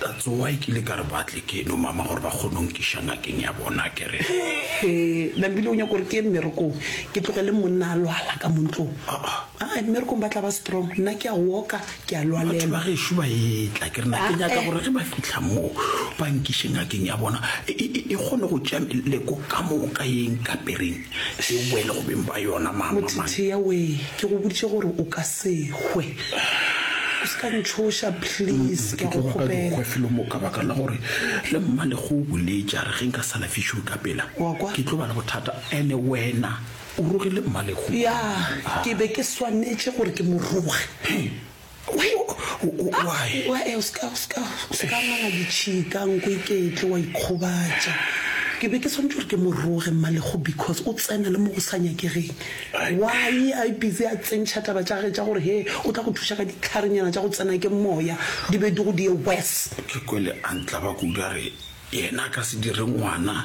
That's why ke ile ka re ba tle ke no mama gore ba kgone go nkiša ngakeng ya bona ke re. He, Nambile o nyaka gore ke ye mmerekong ke tlogele monna a lwala ka mo ntlong? Aa, mmerekong ba tla ba strong, nna ke a woka, ke a lwalelwa. Batho ba gešo ba etla ke re na ke nyaka gore ge ba fitlha moo ba nkiše ngakeng ya bona e kgone go tšea meleko ka moka ye nkapereng Se o boele go beng ba yona, mama. Mothithia wee, ke go boditše gore o ka se hwe. O se ka ntšhoša, please, ke a go kgopela. Ke tlo baka dikgwe felo mo ka baka la gore le mma le go boletše a re ge nka sa lafišwe ka pela ke tlo ba le bothata. Ene wena o rogile mma le go. Ya, ke be ke swanetše gore ke mo roge. ditšhika nko iketle wa ikgobatša ke be ke tshwanetse gore ke mo roge mmalego because o tsena le mo go sa nyakegeng y a ipitse a tsentšha taba tša gage tša gore he o tla go thuša ka ditlharenyana tša go tsena ke moya di be di go die wes ke kwele a ntlaba kudu a re yena a ka se dire ngwana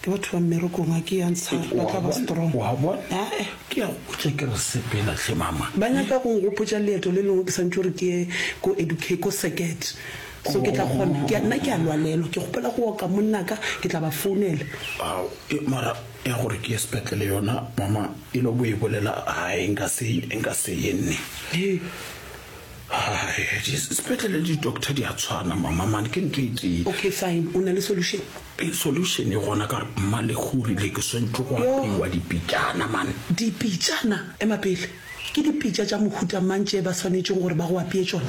Ke batho ba mmerekong a ke ya ntsha ba tla ba strong. Wa bona? Ae. Ke ya go botša ke re sepela hle mama. Ba nyaka go nkgopotša leeto le lengwe ke santšo re ke ye ko Educate ko Circuit. So ke tla kgona ke nna ke ya lwalelwa ke kgopela go oka monna ka ke tla ba founela. Ao e mara ya gore ke ye sepetlele yona mama e lo bo e bolela gae nka se nka se ye nne. Hee. sepetlele di doctor di a tshwana mamamane ke ntho e tee okay fine o na le solution e solution e gona ka mma le gorile ke swentse go apeiwa dipitšana mane dipitšana ema pele ke dipitša tša mohuta mantše ba swanetšeng gore ba go apeye tšona